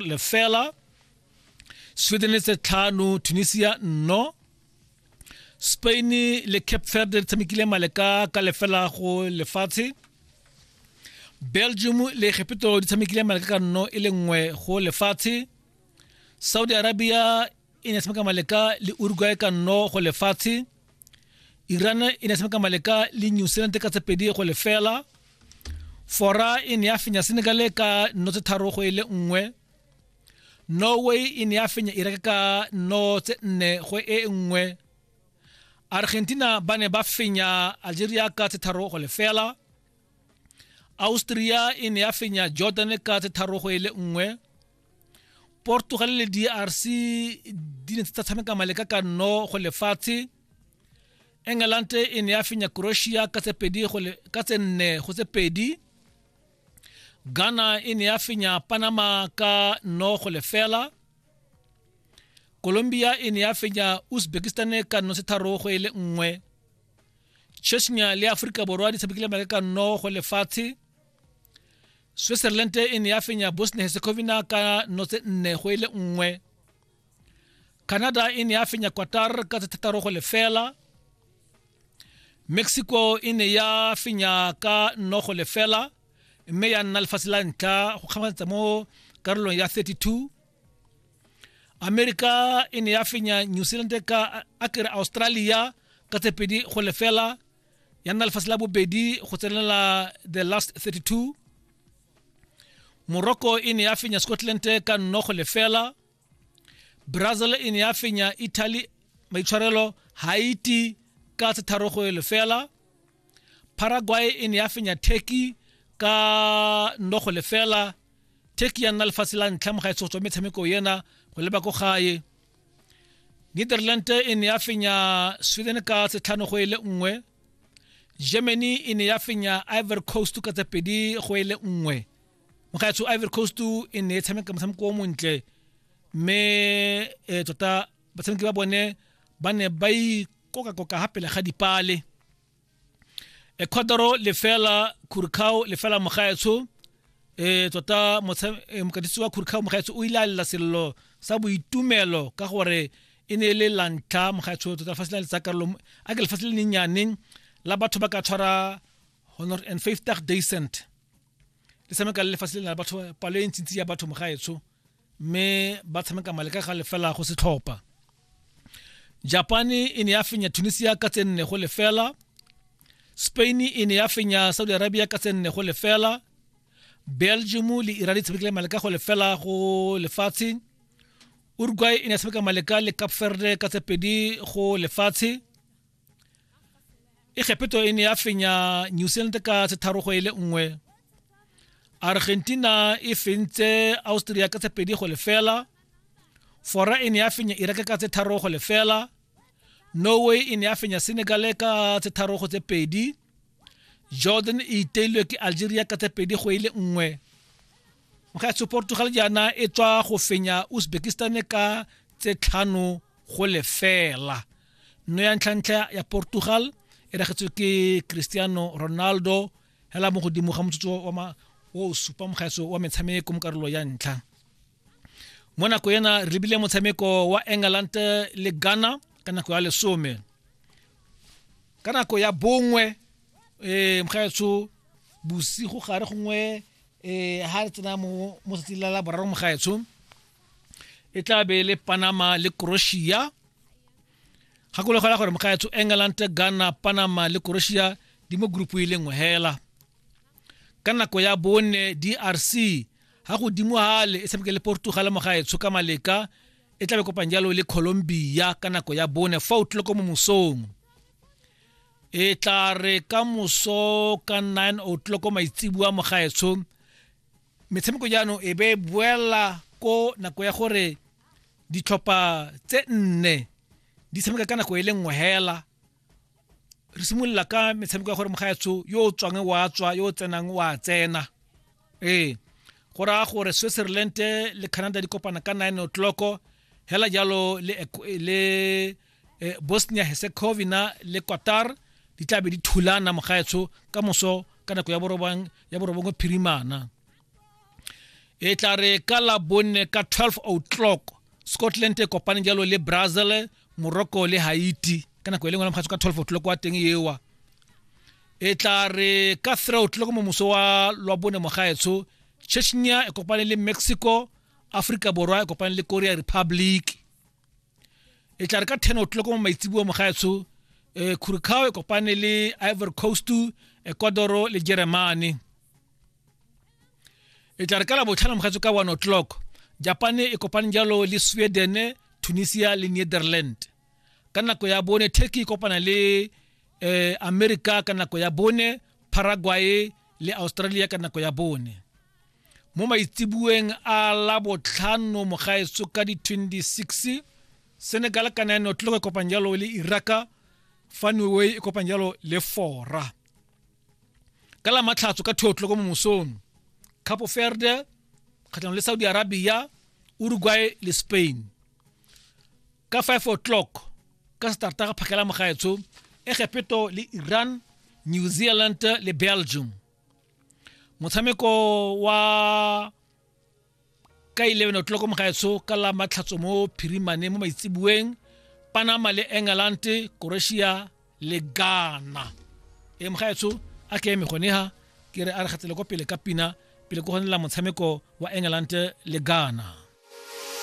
lefela swithenese tlhano tunisia nno spain le cape verde di tshamekile maleka ka lefela go lefatshe belgium le egepetoro di tshamekile maleka ka nno e le nngwe go lefatshe saudi arabia e ne tshameka maleka le uruguay ka nno go lefatshe iran e ne tshameka maleka le new zealand ka tsepedi go lefela fora e ne ya fenya senegal ka nno tse tharo go e le nngwe norway e ne ya fenya iraq ka nno tse nne go e nngwe argentina ba ne ba fenya algeria ka tse tharo go lefela austria e ne ya fenya jordan ka tse tharo go e le nngwe portugal le drc di ne tsa tshameka maleka ka nno go lefatshe england e ne ya fenya croatia ka tse pedi go le- ka tse nne go tse pedi ghana e ne ya fenya panama ka nno go lefela colombia e ne ya fenya uzbekistan ka nno setharo go e le nngwe chechnya le aforika borwa di tshamekile maleka ka nno go lefatshe switzerland e ne ya fenya bosnia herzegovina ka notse nne go ile e nngwe canada e ne ya fenya qatar ka tse thataro go lefela mexico e ne ya fenya ka nno go lefela mme ya nna lefatshe la ntlha go kgamatsa mo karolong ya 32 america e ne ya fenya new zealand ka akere australia ka tse pedi go lefela ya nna lefatshe la bobedi go tsenela the last 32 morocco e ne ya fenya scotland ka nnogo lefela brazil e ne ya fenya italy maitshwarelo haiti ka tshetharogo lefela paraguay e ne ya fenya turkey ka nnogo lefela turkey ya nna lefatshe la ntlha mo gaetsego tswa metshameko ena go leba ko gae netherland e ne ya fenya sweden ka setlhano go e le nngwe germany e ne ya fenya ivory coast ka tse pedi go e le nngwe mogaetsho ivory coast e ne e tshameka motshameko o montle mme e tota batshameki ba bone ba ne ba ikokakoka ga pele ga dipale ecuador lefela curcao lefela mogaetsho e tota e, mokatisi wa curcao mogaetsho o ile a lela selelo sa boitumelo ka gore e ne e le lantlha mogaetsho tota lefatshe le le tsakarolo a ke lefatshe le lennyane la batho ba ka tshwara honor and fifty dacent le tshameka le lefatshe le na le batho palo e ntsintsi ya batho mogaetsho mme ba tshameka male ka ga lefela go setlhopha japan e ne ya fenya tunisia ka tse nne go lefela spain e ne ya fenya saudi arabia ka tse nne go lefela belgium le iran di tshamekile male ka go lefela go lefatshe uruguay e ne ya tshameka male ka le cape verde ka tse pedi go lefatshe e kgepheto e ne ya fenya new zealand ka setharogo e le nngwe argentina e fentse austria ka tshepedi go lefela fora e ne ya fenya iraq ka setharogo lefela norway e ne ya fenya senegal ka setharogo tse pedi jordan e iteilwe ke algeria ka tse pedi go ile nngwe gaetsho portugal jaana e tswa go fenya uzbekistan ka tse tlhano go lefela nno ya ntlhantlha ya portugal e ragetswe ke cristiano ronaldo hela mo godimo ga motsotso wa o supa mogaetso wa metshameko mo karolo ya ntlha mo nako ena re lebile motshameko wa england le ghana ka nako ya lesome ka nako ya bongwe um mogaetsho bosigo gare gongwe um ga re tsena mo tsatsing la la boraro mogaetsho e tla be le panama le croatia gakologela gore mogaetsho england ghana panama le croatia di mo group e le nngwe hela ka nako ya bone drc ga godimo gale e tshameke le portugal mo gaetsho ka maleka e tlabe kopang jalo le colombia ka nako ya bone fa o tlile ko mo mosong e tla re ka moso ka 9 o tlile ko maitsibua mo gaetsho metshameko jaanong e be boela ko nako ya gore ditlhopha tse nne di tshameka ka nako e le nngwe hela re simolola ka metshameko ya gore mogaetsho yo o tswang wa tswa yo o tsenang wa tsena ee go raya gore switzerland le canada di kopana ka 9 o'clock hela jalo le, le eh, bosnia herzegovina le qatar di tlabe di thulana mogaetsho ka moso ka nako ya borobang ya borobongwe phirimana e tla re ka la bonne ka 12 o'clock scotland e kopane jalo le brazil moroko le haiti ka nako e lengwe la mokgatso ka 12 o'clock wa teng ewa e tla re ka 3 o'clock mo moso wa lwa bone mogaetsho chechnya e kopane le mexico africa borwa e kopane le korea republic e tla re ka 10 o'clock mo maitsibua mogaetsho e curacao e kopane le ivory coast ecuador le germany e tla re ka la botlhano mogatso ka one o'clock japan e kopane jalo le sweden tunisia le netherland ka nako ya bone turkey e kopana le eh, america ka nako ya bone paraguay le australia ka nako ya bone mo maitsibueng a la botlhano mogaetso ka di-26 senegal ka nine o'clock e kopang jalo le iraka fanway e kopang jalo le fora ka la matlhatso ka thotlo ko momosong capo verde kgatlhanong le saudi arabia uruguay le spain ka 5 o'clock ka starta ga phakela mogaetsho egepeto le iran new zealand le belgium motshameko wa ka 11 o'clock mogaetsho ka la matlhatso mo phirimane mo maitseboeng panama le england croatia le ghana e mogaetsho a ke eme gone ha ke re a re gatsele kwa pele ka pina pele ko gonela motshameko wa england le ghana